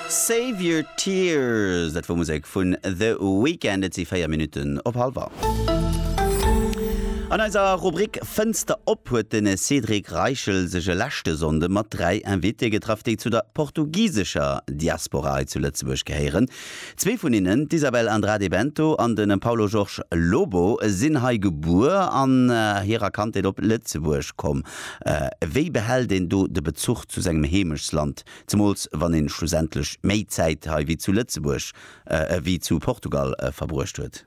Save Your Tears, dat wor Musek vun The Weeknd. Et si 4 Minutten op hallwer. An eiser Rubrik Fënster op huet de Cédric Reichel sech e leschte Sonnde mat 3 Invitéë getraff, déi zu der portugisescher Diaspora hei zu Lëtzebuerg gehéieren. Zwee vun hinnen, d'Isabel Andrade Bento an de Paulo Jorge Lobo, sinn hei gebuer an hirer Kandheet op Lëtzebuerg komm. Wéi behält een do de Bezuch zu sengem Heemechtsland, zemools wann ee schlussendlech méi Zäit hei wéi zu Lëtzebuerg, wéi zu Portugal verbruecht huet?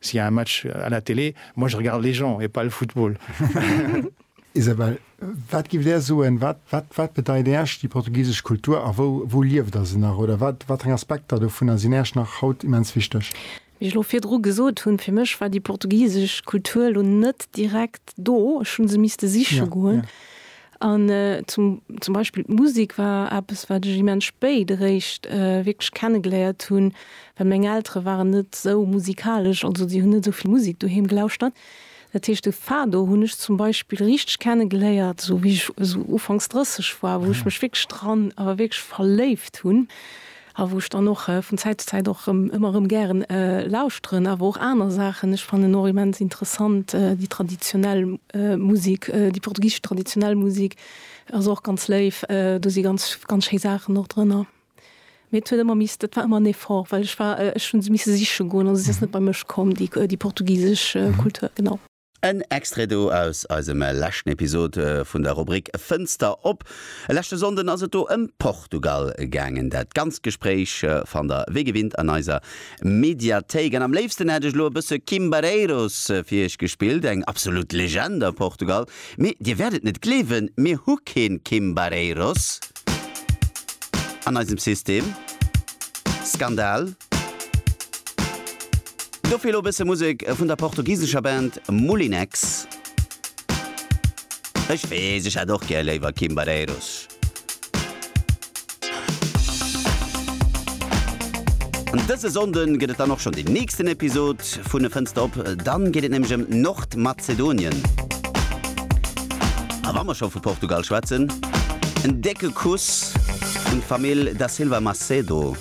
S'il y a un match à la télé, moi je regarde les gens et pas le football. Isabel, wat giff Där soen, wat, wat, wat bedeit Äerch déi portugisesch Kultur a wou, wou lieft Der se nach oder wat, wat eng Aspekter dovunner sinn Äerch nach haut immens wichteg? Wéi ech lo virdru gesot hunn, fir mech war déi portugisesch Kultur lo net direkt do, ech hu se misste siche goen. An zum, zum Beispill d'Musik war eppes, wat ech immens spéit eréischt wierklech kennegeléiert hunn, well meng Eltere waren net esou musikalesch, also si hunn net esou vill Musik doheem gelauschtert. Dat heescht de Fado hunn ech zum Beispill richteg kennegeléiert, esou wéi ech esou ufanks 30 war, wou ech mech wierklech dran, awer wierklech verléift hunn. A wou ech dann och vun Zäit zu Zäit och rëm, ëmmer rëm gären lauschteren. Awer och aner Saachen. Ech fannen och immens interessant déi traditionell Musek, déi portugisesch traditionell Musek ass och ganz léif. Do si ganz, ganz schéi Saachen och drënner. Mee et huet ëmmer misst, et war ëmmer en Effort, well ech war, ech hu se misse siche goen. Also se ass net bei mech komm, déi, déi portugisesch Kultur, genau. En Extrait do aus eisem leschten Episode vun der Rubrik Fënster op. E leschte Sonnden ass et do ëm Portugal gaangen. Dat ganzt Gespréich fannt der wéi gewinnt an eiser Mediathéik. An am léifsten hätt ech elo e bësse Kim Barreiros fir iech gespillt, eng absolut Legend a Portugal. Mee dir wäert et net gleewen, mir hu keen Kim Barreiros an eisem System. Skandal! Dofir elo bësse Musek vun der portugisescher Band Moulinex. Ech weess, ech hätt och gär léiwer Kimbareiros. Dëse Sonnde gëtt et dann och schonn den nächsten Episod vun E Fënster op. Dann geet et nämlech ëm Nordmazedonien. A wa mer scho vu Portugal schwätzen, en décke Kuss un d'Famill Da Silva Macedo.